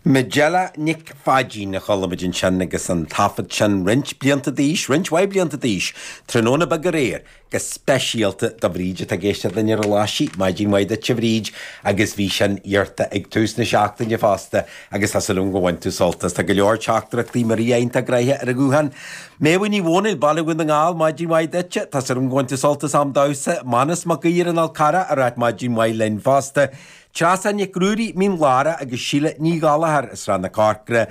Majella Nic Pháidín a chualamid ansin agus an taifead sin roinnt blianta d'aois, roinnt mhaith blianta d'aois. Tráthnóna Beag Aréir, go speisialta do Bhríd atá ag éisteacht linn ar Ghlaise Chú, maidin mhaith duit, a Bhríd agus bhí sin iarrta ag tús na seachtaine fosta agus tá súil agam go bhain tú sult as. Tá go leor teachtaireachtaí mar is gnách, tá graithe ar an ghuthán. Méadhbh Ní Mhónaoil, Baile Dhún na nGall, maidin mhaith duit, tá súil agam go bhain tú sult as an damhsa. Manus Mac Aoidh ar an Fhál Carrach ag ráit maidin mhaith linn fosta. Treasa Nic Ruairí, Mín Lárach agus Síle Ní Ghallchóir i Srath na Corcrach.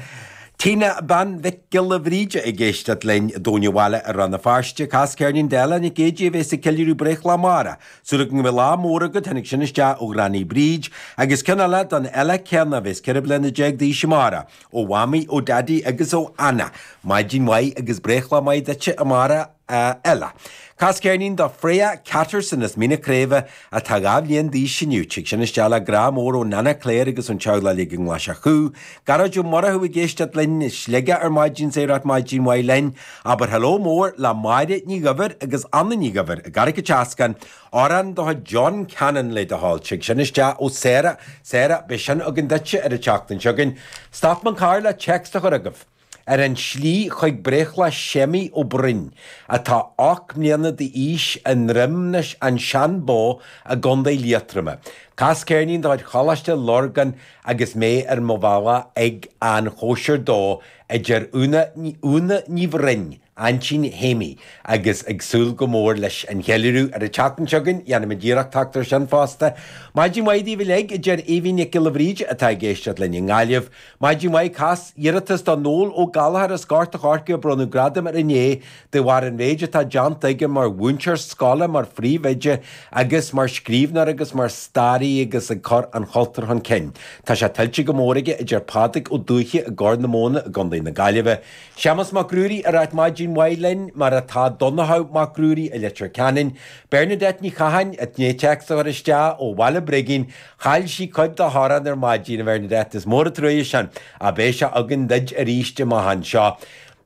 Teeny Bean Mhic Giolla Bhríde ag éisteacht linn i dTóin an Bhaile i Rann na Feirste, cas ceirnín d'Eile Nic Éidí a bheas ag ceiliúradh breithlá amárach. Súil go mbeidh lá mór agat, tháinig sin isteach ó Ghranny Bríd. Agus ceann eile don Eile chéanna a bheas ceithre bliana déag d'aois amárach. Ó Mhamaí, ó Daidí agus ó Anna. Maidin mhaith agus breithlá maith duitse amárach. a Eile. Cas ceirnín do Freya Catterson, as Mín na Craoibhe, atá dhá bhliain d'aois inniu. Tig sin isteach le grá mór ó Nana Claire agus ón teaghlach uilig i nGlaise Chú. Gearóid Ó Murchú ag éisteacht linn i Sligeach ar maidin ag ráit maidin mhaith linn. Abair hello mór le Máire Ní Dhuibhir agus Anna Ní Dhuibhir i gCarraig an tSeascainn. Amhrán do John Cannon le do thoil. Tig sin isteach ó Sarah. Sarah, beidh sin againn duitse ar an tseachtain seo chugainn. Stop an carr le text a chur chugaibh. Ar an tslí chuig breithlá Shéimí Ó Broin, atá ocht mbliana d'aois, i nDroim Seanbhó i gContae Liatroma. Cas ceirnín de chuid Choláiste Lorgan agus mé ar mo bhealach chuig an chóisir dó, a deir Úna Ní Bhroin, aintín Shéimí, agus ag súil go mór leis an gceiliúradh ar an tseachtain seo chugainn. Déanfaimid iarracht teacht ar sin fosta. Maidin mhaith daoibh uilig, a deir Aoibhín Nic Giolla Bhríde atá ag éisteacht linn i nGaillimh. Maidin mhaith, Cas iarratas do Noel Ó Gallchóir as Gort a' Choirce a bronnadh gradam air inné de bharr an mhéid atá déanta aige mar mhúinteoir scoile, mar phríomhoide agus mar scríbhneoir agus mar staraí agus ag cur an chultúir chun cinn. Tá sé tuillte go mór aige, a deir Pádraig Ó Dubhthaigh i gCorr na Móna i gContae na Gaillimhe. Séamus Mac Ruairí ag ráit maidin mhaith linn, mar atá Donnchadh Mac Ruairí i Leitir Ceanainn, Bernadette Ní Chatháin i ndiaidh téacs a chur isteach ó Bhaile Brigín, chaill sí cuid dá hamhrán ar maidin, a Bhernadette, is mór an trua sin, ach beidh sé againn duid arís am inteacht anseo.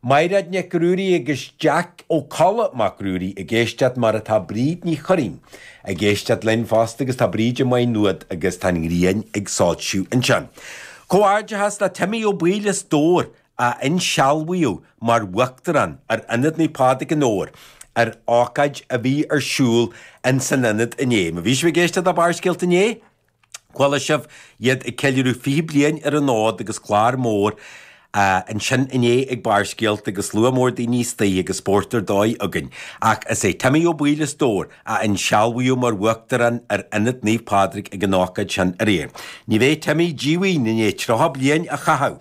Maighreád Nic Ruairí agus Jeaic Ó Colla Mac Ruairí ag éisteacht, mar atá Bríd Ní Churraoin ag éisteacht linn fosta agus tá Bríd i Maigh Nuad agus tá an ghrian ag soilsiú ansin. Comhghairdeachas le Timmy Ó Baoill as Dobhar a insealbhaíodh mar Uachtarán ar Ionad Naomh Pádraig i nDobhar ar ócáid a bhí ar siúl ins an Ionad inné. Má bhí sibh ag éisteacht le Barrscéalta inné, chuala sibh iad ag ceiliúradh 20 bliain ar an fhód agus clár mór ansin inné ag Barrscéalta agus slua mór daoine istoigh agus spórt ar dóigh againn. Ach is é Timmy Ó Baoill as Dobhar a insealbhaíodh mar Uachtarán ar Ionad Naomh Pádraig ag an ócáid sin aréir. Ní bheidh Timmy díomhaoin i ndiaidh 30 bliain a chaitheamh